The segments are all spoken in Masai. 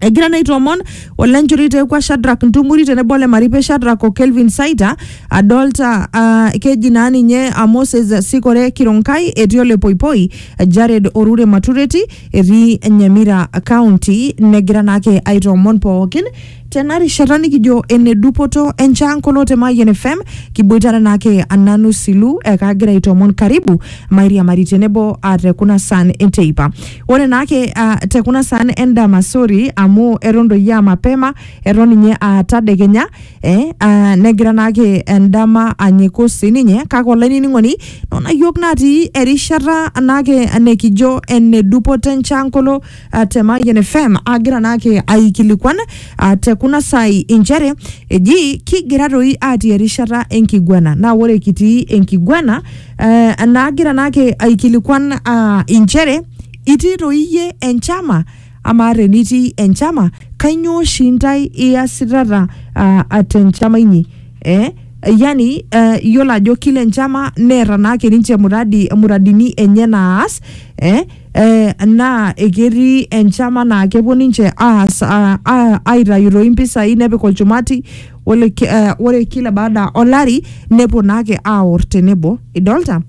egira naa aitoomon olenchori teekua Shadrack Ntumuri tenebo ole Maripe Shadrack o Kelvin Saita adolta ah, keji naa ninye ah, Moses Sikore Kironkai etii ole Poipoi Jared Orure Matureti etii Nyamira County negira naake aitoomon pookin tena rishata nikijo ene dupoto enchaankono te Mayian FM kiboitare naake ananu silu ekagira aitoomon karibu mairiamari tenebo ah, te kuna saan enteipa Ore naake ah, te kuna saan endama sori amu eton doi aa mapema eton ninye aa tadekenya eh, ah, negira naake endama anyiku sininye kake olainining'oni nona yiok natii erishata naake nekijo ene dupoto enchankolo ah, te Mayian FM agira naake aikilikuan ah, te kuna saai inchere eji kigira doi atii erishata enkiguana naa ore kitii enkiguana Eh, naagira naake aikilikwan ah, inchere itii toi iyie enchama amaa tenitii enchama kainyoo oshi intae iasitata ah, ah, tenchama inyi eh? yani eh, iyiolo ajo kila enchama neeta naake ninche muradi, muradini enye naas eh? Eh, naa eketii enchama naa kepuo ninche aas ah, ah, aitayu toi impisai nepik olchumati ore, ki- eh, ore kila baada olari nepuo naake aor tenebo idolta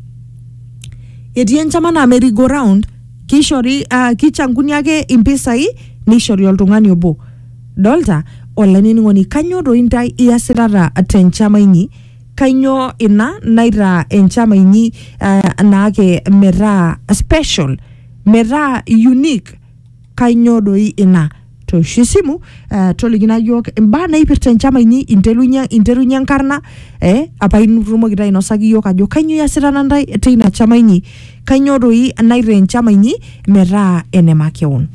etii enchama naa merry go round kishori uh, kichanguni ake impisai nishori oltung'ani obo dolta olainining'oni kanyoo doi intae iasitata tenchama inyi kanyoo ina naitaa enchama inyi uh, naake metaa special metaa unique kainyoo doi ina tooshu esimu eh, tolikina yiok imbaa naipirta enchama inyi interunye interunye enkarna eh, apa itumoki taa ainosaki iyiok ajo kainyoo iasita nantae teina chama inyi kainyoo doi naitaa enchama inyi metaa ene makeon